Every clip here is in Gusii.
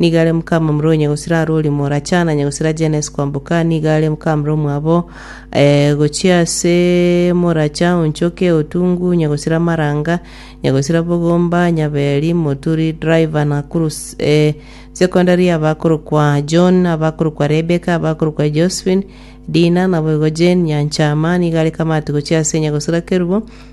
Nigo are mokamamura o nyagosira arwe oria moracha, na nyagosira Janesi kwamboka, nigo are mokamamura omwabo, eh, gochia ase moracha onchoke otungu, nyagosira maranga, nyagosira bogomba, nyaberi, moturi, driver, na kurus, eh, secondary, abakorokwa John, abakorokwa Rebeka, abakorokwa Josephine, Dina, naboigo Jane, nyanchama, nigo are kamati gochia ase nyagosira kerubo,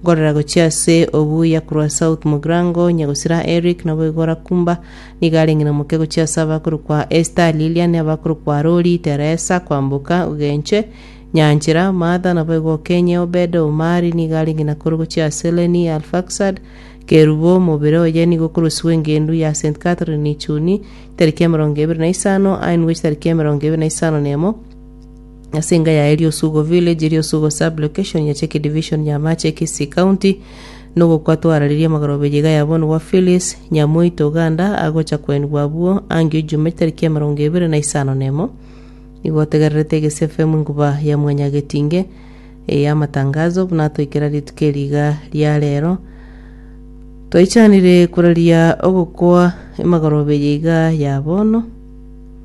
Nkorera gochia ase obuya korwa South Mugrango, Nyagosira Eric, Naboigo Rakumba, nigo are ng'ina moke gochia ase abakorokwa Esther, Lilian, abakorokwa Rori, Teresa, Kwamboka, Ogenche, Nyanchera, Martha, Naboigo Okenye, Obed, Omari, nigo are ng'ina koro gochia ase Lenny, Arfaxad, Kerubo, Mobere oye nigo okorosirwe eng'endu ya St. Catherine Chuni, tariki emerongo ebere na isano, Ainwech tariki emerongo ebere na isano nemo, Ase enga yaye Riosugo Village, Riosugo Sub Location ya Cheki Division ya Amache, Kisii County, nogokwa twarareria amagoro obe yiga yabonigwa Phyllis Nyamoiti Oganda agocha koenigwa abwo angio Ijumaa etariki emerongo ebere na isano na emo. Nigo otegererete Egesie FM inkuba ya mwanyagetinge eya amatangazo buna atoikera rituko eri iga ria rero. Twaichanire koraria ogokwa emagorobe yiga ya bono.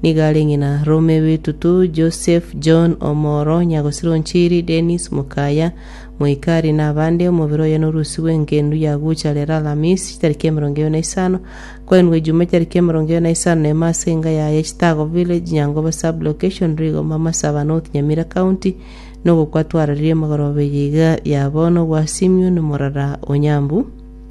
Nigo are ng'ina Rome b'etutu, Joseph, John, omoro nyagosira o nchiri, Dennis, mokaya, Moikari, na abande. Omobere oye norusigwe engendu ya gocha rero Alamisi, chitariki emerongo ebere na isano, kwainwe Ejuma, chitariki emerongo ebere na isano na emo ase enga yaye, Chitango Village, Nyangoba Sub-location, Rigoma, Masaba, North Nyamira County, na ogokwa twararirie magoroba eye iga ya bono gwa Simion, morara o Nyambu.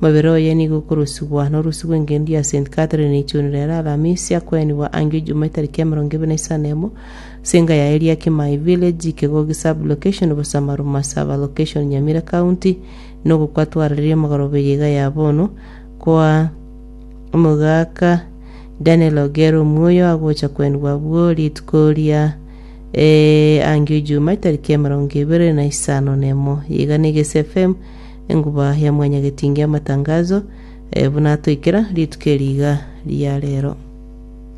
Omobere oye nigo okorosigwa norusi rw'engencho ya St. Catherine ichunire ere Alamisi akwenigwa angio Ijumaa etariki emerongo ebere na isano emo ase enka ya Eliakimai Village, Kegogi Sub-location, Busamaruma Sub-location, Nyamira County, na ogokwa twarereire omogoroba eye iga ya bono kwa Omogaka Daniel Ogier Omuoyo agocha kwenigwa abwo rituko ria angio Ijumaa etariki emerongo ebere na isano nemo. Iga na Egesi FM. Enguba ya Mwanyagetingi Amatangazo, buna atoikera rituko eri iga ria rero.